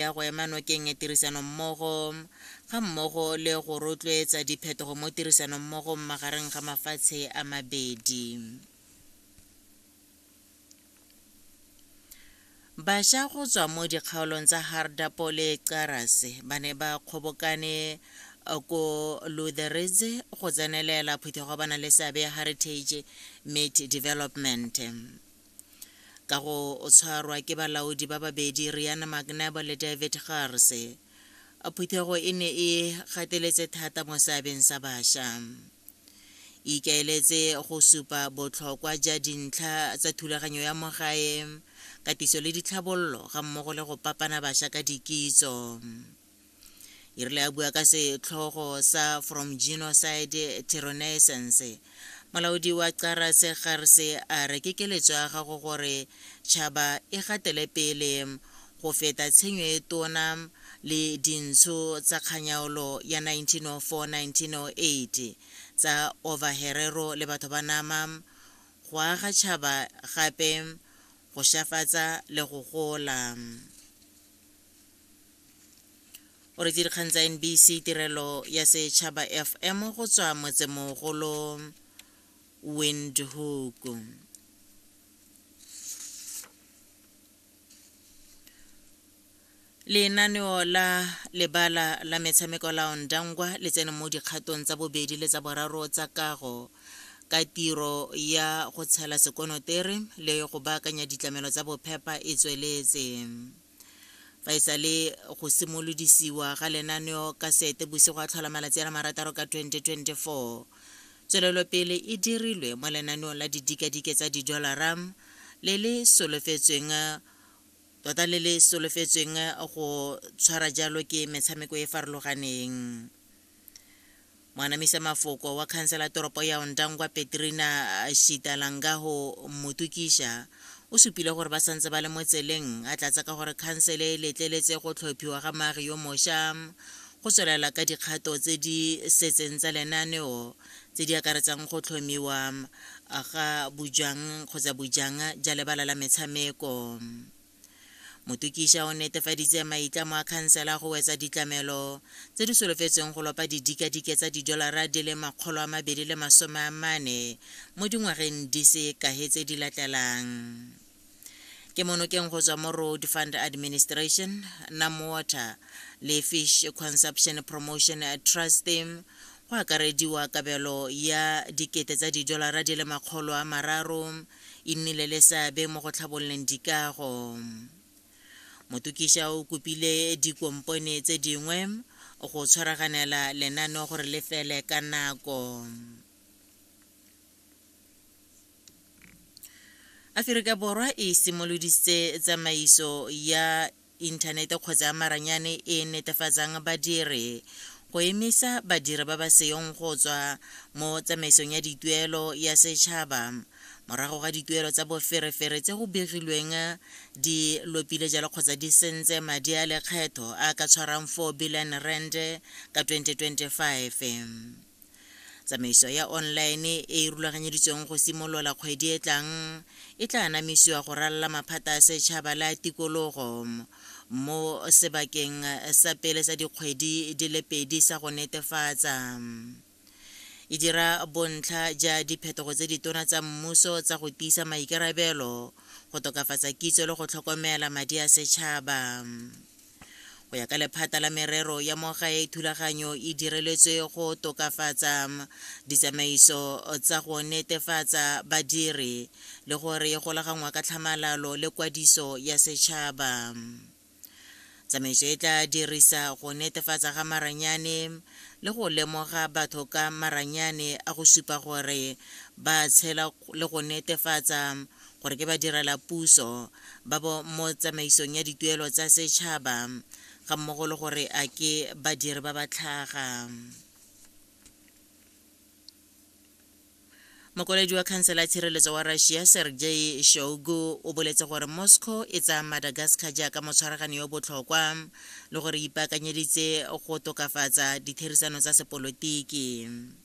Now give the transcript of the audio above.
ya go ema nokeng tirisanommogo ga mmogo le go rotloetsa diphetogo mo tirsanommogo magareng ga mafatshe a mabedi. Basha go tswa mo dikgaolong tsa Hardapo le Qarase ba ne ba kgobokane uh, ko Lutheridze go tsenelela phuthego ba na le seabe ya Heritage Meat Development. ka go tshwarwa ke balaodi ba babedi riana mcnabo le david garse phuthego e ne e gateletse thata mo seabeng sa bašwa e ikaeletse go supa botlhokwa ja dintlha tsa thulaganyo ya mogae katiso le ditlhabololo ga mmogo le go papana bašwa ka dikitso e rile a bua ka setlhogo sa from genocide to renaissance molaodi wa cara se garse a re ke keletso ya gago gore tšhaba e gatele pele go feta tshenyo e tona le dintsho tsa kganyaolo ya 1904-1908 tsa overherero le batho ba nama go aga tšhaba gape go šafatsa le go gola o re dikgang tsa nbc tirelo ya setšhaba fm go tswa motsemogolo windhoek lenaneo la lebala la metshameko la ondangwa le tsene mo dikgatong tsa bobedi le tsa boraro tsa kago ka tiro ya go tshela sekonotere le go baakanya ditlamelo tsa bophepa e tsweletse fa e sale go simolodisiwa ga lenaneo ka sete bosigo a tlhola malatsi a le marataro ka 2024 tswelelopele e dirilwe mo lenaneong la didikadike tsa didolara le le solofetsweng tota le le solofetsweng go tshwara jalo ke metshameko e farologaneng Mwanamisa mafoko wa khansela toropo ya Ondangwa Petrina Shitalangaho Mutukisha o supile gore ba santse ba le mo tseleng a tlatsa ka gore khansele e letleletse go tlhophiwa ga maagi yo mosha go tswelela ka dikgato tse di setseng tsa lenaneo tse di akaretsang go tlhomiwa ga bojang kgotsa bojang ja lebala la metshameko motokiša o netefaditse maitlamo a khansela go wetsa ditlamelo tse di solofetsweng go lopa didikadike tsa didolara di le makgolo a mabedi le masome a mane mo dingwageng di se kahe tse di latlelang ke monokeng go tswa mo road fund administration nam water le fish consumption promotion trust go akarediwa kabelo ya dikete tsa didolara di le makgolo a mararo e nnile le seabe mo go tlhabololeng dikago. Motukiša o kopile dikompone tse dingwe go tshwaraganela lenaneo gore le fele ka nako. Aferika Borwa e simolodisitse tsamaiso ya inthanete kgotsa ya maranyane e e netefatsang badiri go emisa badiri ba ba seyong go tswa mo tsamaisong ya dituelo ya setšhaba morago ga dituelo tsa boferefere tse go begilweng di lopile jalo kgotsa di sentse madi a lekgetho a ka tshwarang 4 billion rand ka 2025 tsamaiso ya online e e rulaganyeditsweng go simolola kgwedi e tlang e tla anamisiwa go ralala maphata a setšhaba le a tikologo mo sebakeng sa pele sa dikgwedi di le pedi sa go netefatsa e dira bontlha ja diphetogo tse ditona tsa mmuso tsa go tiisa maikarabelo go tokafatsa kitso le go tlhokomela madi a setšhaba go ya ka lephata la merero ya mogae thulaganyo e direletswe go tokafatsa ditsamaiso tsa go netefatsa badiri le gore e golaganngwa ka tlhamalalo le kwadiso ya setšhaba tsamaiso e tla dirisa go netefatsa ga maranyane le go lemoga batho ka maranyane a go supa gore ba tshela le go netefatsa gore ke badirela puso ba bo mo tsamaisong ya dituelo tsa setšhaba ga mmogo le gore a ke badiri ba ba tlhaga mokwaledi wa khansela ya tshireletso wa russia sergei shogu o boletse gore moscow e tsaya madagascar jaaka motshwaragani yo botlhokwa le gore ipaakanyeditse go tokafatsa ditherisano tsa sepolotiki